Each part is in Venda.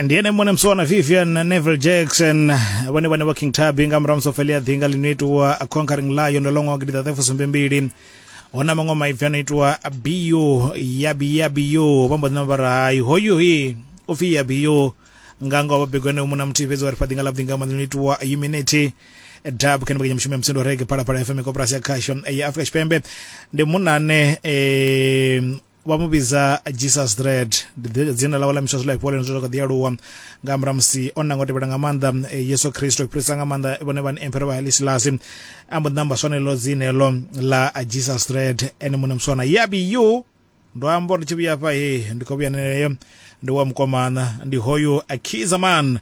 ndi ene mone msona vivian neville jackson vhone vhane vha king tabi nga murahu musofelia ḓinga ḽi no itiwa a conquering lion ḽo ṅwaha gidi ṱaṱefu sumbe mbili hu na maṅwe maipfi a no itiwa bio yabi yabio vha mbo ḓina vha rahayi hoyu hi u pfi yabio nga ngoho vha begwa ene muna muthihi fhedzi wa ri fha ḓinga ḽa ḓinga maḓi no itiwa humanity dab kha mbekanyamushumo ya musindo rege phalaphala fm koporasi ya khasho ya afrika tshipembe ndi munane um vha mu vhidza jesus dread dzina ḽawe ḽa miswa zwi lafhiwa lene zwo kha ḓi aluwa nga murahu musi o nanga u tevhela nga maanḓa eh, yesu kristo i fhirisa nga maanḓa vhone vhani emperor vha haile silasi a mbo ḓi namba swanelo dzine heḽo ḽa jesus dread ene muṋe muswana yabi yu ndo amba uri ndi tshi vhuya afha he ndi khou vhuya neneyo ndi wa mukomana ndi hoyu akizaman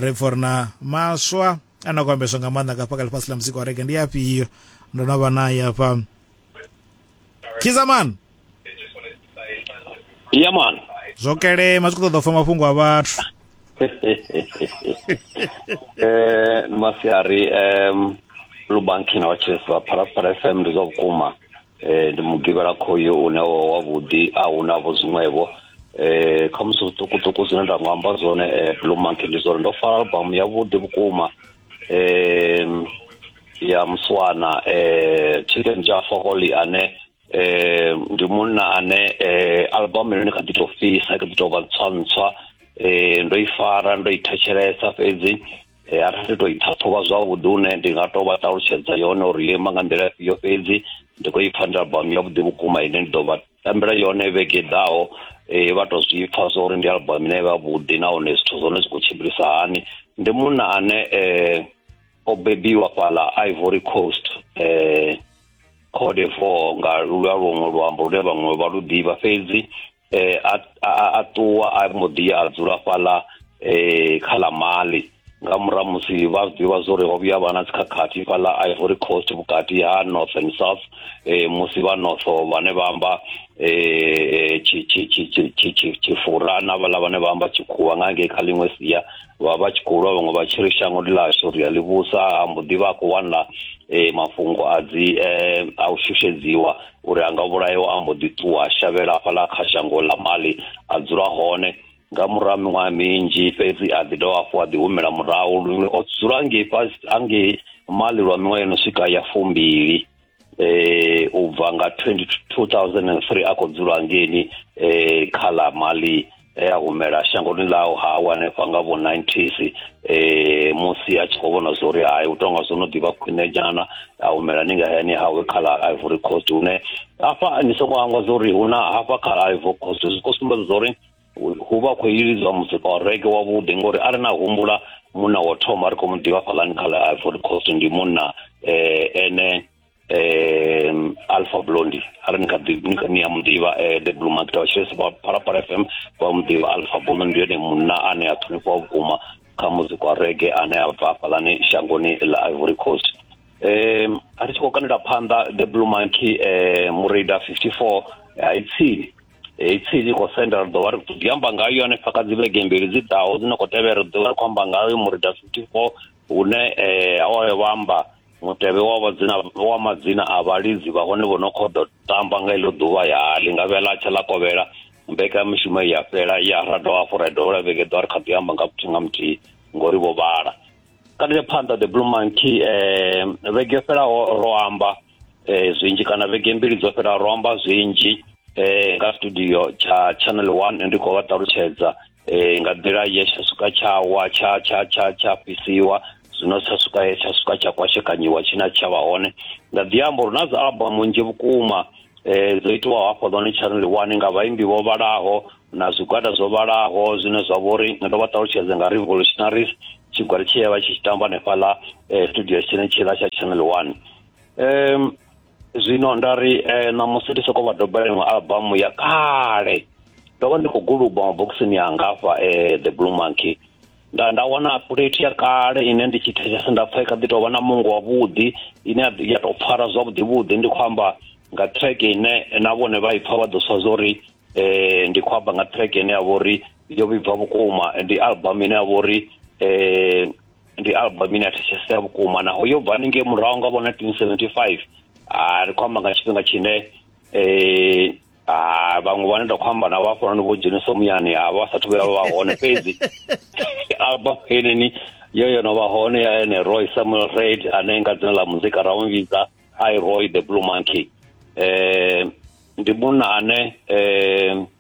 ri pfo ri na maswa ane a khou ambeswa nga maanḓa nga fhakha ḽifhasi ḽa muzika wa rege ndi afhio ndo no vha naye afha kizaman ya man zwo kelema zwi khou ṱoḓa u fa mafhungo a vhathu eh masiari um lubanki na vhatshesi vha phalaphala fm ndi zwa vhukuma eh, ndi mugivhela khoyo une wa wavhuḓi a huna vho zwiṅwevho eh kha musi zwiṱukuṱuku zwine nda nga amba zwone eh, blue monkey ndi zwone ndo fara albamu yavhuḓi vhukuma eh ya muswana eh chicken jaffa holy ane eh ndi munna ane eh albamu ine kha ḓi tou fhisa kha ḓi tou vha ntswa ntswa eh ndo i fara ndo i thetshelesa fhedzi e, arali ndi to i ṱhaṱhuvha zwavhuḓi une ndi nga to vha ṱalutshedza yone uri yo ima nga nḓila yo fhedzi ndi khou ipfa ndi albamu yavhuḓi vhukuma ine ndi ḓo vha tambela yone vhege ḓaho e, vha to zwi pfa zwa uri ndi albamu ine vha vhuḓi nahone zwithu zwone zwi khou tshimbilisa hani ndi munna ane um o bebiwa fhala ivory coast um code four nga lulwa luṅwe luambo lune vhaṅwe vha lu ḓivha fhedzi eh a a ṱuwa a mbo ḓi a dzula fhaḽa eh kha ḽa mali nga murahu musi vha zwi ḓivha zwo ri ho vhuya vha na dzikhakhathi fhaḽa ivory coast vhukati ha north and south eh musi vha north vhane vha amba eh tshifura na vhaḽa vhane vha amba tshikhuwa nga ngei kha ḽiṅwe sia vha vha tshi khou lwa vhaṅwe vha tshi ri shango ndi ḽashu ri a ḽi vhusa ha mbo ḓi vha a khou wanla eh mafhungo a dzi eh a u shushedziwa uri a nga vhulayo a mbo ḓi ṱuwa a shavhela hafhaḽa kha shango ḽa mali a dzula hone nga murahu miṅwaha minzhi fhedzi a ḓi dovha hafhu a ḓi humela murahu lune o dzula ngei fhasi angei mali lwa miṅwaha yo no swika ya fumbili eh u bva nga 2003 a khou dzula ngeni eh kha ḽa mali e a humela shangoni ḽaho ha awa hanefha nga vho 90s eh musi a tshi khou vhona zwa uri hai u tonga zwo no ḓivha khwine nyana a humela ni nga hayani hawe kha ḽa ivory coast hune hafha ni songo hangwa zwa uri hu na hafha kha ḽa ivory coast zwi khou sumbedza zwa uri hu vha khou ilidzwa muzika wa rege wavhuḓi ngori a ri na humbula munna wa thoma ri khou mu ḓivha fhaḽani kha ḽa ivory coast ndi munna um ene um alpha blondi ara ni kha ḓi ni kha ni ya muḓivha eh, the blue market wa tshilesa vha phalaphala fm vha muḓivha alpha blondi ndi yone munna ane a ṱhonifhiwa vhukuma kha muzika wa rege ane a bva hafhaḽani shangoni ḽa ivory coast um a ri tshi khou kandela phanḓa the blue monkey um murida 54 hai tsini hei tsini khou senda ri ḓo vha ri khou ḓi amba ngayo hanefha kha dzi vhege mbili dzi ḓaho dzine khou tevhela ri ḓo vha ri khou amba ngayo murida 54 hune um awayo vha amba mutevhe wa vhadzina wa madzina a vhalidzi vha hone vho no khou ḓo tamba nga iḽo ḓuvha ya ḽi nga vhela tsha ḽa kovhela mbekamishumo ya fhela ya ra dovha hafhu ra dovha lwa vhege ḓo ri kha ḓi amba nga muthihi nga muthihi ngori vho vhala kana ya phanḓa the blue monkey eh vhege fhelaho ro amba eh zwinzhi kana vhege mbili dzo fhelaho ro amba zwinzhi eh nga studio tsha channel 1 ndi khou vha ṱalutshedza eh nga nḓila ye tsha swika tsha wa tsha tsha tsha tsha fhisiwa zwino tsha swika he tsha swika tsha kwashekanyiwa tshina tsha vha hone nga ḓi amba uri na dza album nzhi vhukuma um dzo itiwa hafho ḽone tsharini ḽiwani nga vhaimbi vho vhalaho na zwigwada zwo vhalaho zwine zwa vha uri ndo vha ṱalutshedze nga revolutionaries tshigwada tshi ya vha tshi tshi tamba hanefhaḽa um studio tshine tshiḽa tsha channel one um zwino nda ri eh, ṋamusi ndi sokou vha doba iṅwe albamu ya kale ndo vha ndi khou guluba mabokisini yanga hafha eh, the blue monkey nda nda wana plate ya kale ine ndi tshi thetshelesa nda pfha i kha ḓi tou vha na mungo wavhuḓi ine ya- ya tou pfara zwavhuḓi vhuḓi ndi khou amba nga track ine na vhone vha i pfha vha ḓo sa zwa uri eh, ndi khou amba nga track ine ya vha uri yo vhibva vhukuma ndi album ine ya vha uri eh, ndi album ine ya thetshelesea vhukuma naho yo bva haningei murahu nga vho 1975 ri khou amba nga tshifhinga tshine um ha vhaṅwe vhane nda khou amba navho hafhanoni vho dzhenisa muyani ha vha sathu vhuya vha hone fhedzi album heneni yo yo no vha hone ya ene roy samuel red ane nga dzina ḽa muzika ra mu vhidza i roy the blue monkey um ndi munna ane um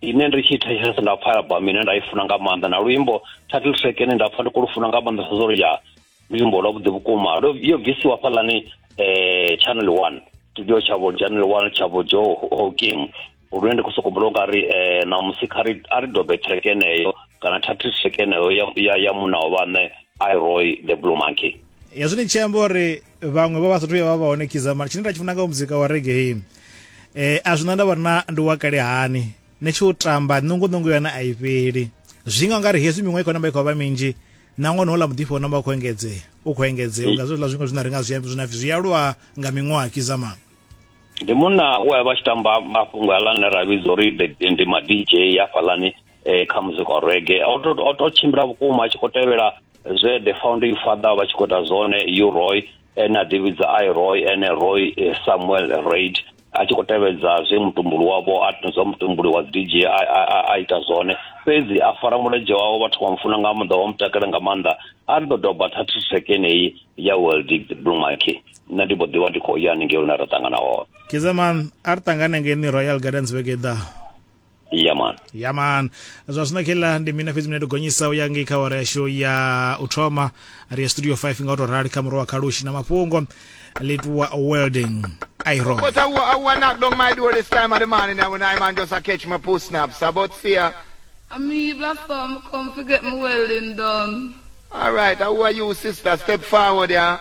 ine ndi tshi thetshelesa nda pfha album ine nda i funa nga maanḓa na luimbo title track ine nda pfha ndi khou lu funa nga maanḓa sa zwori ya luimbo lwavhuḓi vhukuma lwo- yo bvisiwa fhaḽani eh channel one studio tshavho channel one tshavho jo hokim lune ndi khou sokou mbula unga ri eh na musi kha ri a ri dobe track eneyo kana title track eneyo ya ya, ya muna wa vhaṋe iroy the blue monkey hezwi ni tshi amba uri vhaṅwe vha vha sathu ya vha vha hone kiza mara tshine nda tshi funa nga muzika wa reggae eh a zwi na ndavha na ndi wa kale hani ni tshi u tamba nungu nungu yone a i fheli zwi nga ngari hezwi miṅwe khona mbekho vha minzhi na ṅwana hola muḓifho na vha khou engedzea u khou engedzea nga zwiḽa zwiṅwe zwine ri nga zwi zwina zwi aluwa nga miṅwaha kiza mama ndi munna we a vha tshi tamba mafhungo aḽa ne ra vhidza uri ndi ma-dj hafhaḽani eh, kha muzika wa rege o to tshimbila vhukuma a tshi khou tevhela zwe the founding father vha tshi khou ita zwone u roy ene a ḓivhidza i roy ene roy eh, samuel raid a tshi khou tevhedza zwe mutumbuli wavho a zwa mutumbuli wa dj a ita zwone fhedzi a fara mulenzhe wawo vhathu vha mufuna nga maanḓa vha mutakale nga maanḓa a ri ḓo doba thathi sekeneyi ya world blue monkey nṋe ndi mbo ḓivha ndi khou ya haningei lune ra ṱangana hone kizeman a ri ṱangane ngeni royal gardens vhege ḓaho iya man ya man zwa zwino kheḽa ndi mina fhedzi mine ndo gonyisa u ya ngei kha wara yashu ya u thoma ri ya studio 5 nga u tou rali kha muro wa khalushi na mafhungo lituwa welding iron But I, wa- I want knock down my door this time of the morning, and when I man just a catch my poo snaps. About see ya. I mean, black farm come to get my welding done. All right, how are you, sister? Step forward, yeah.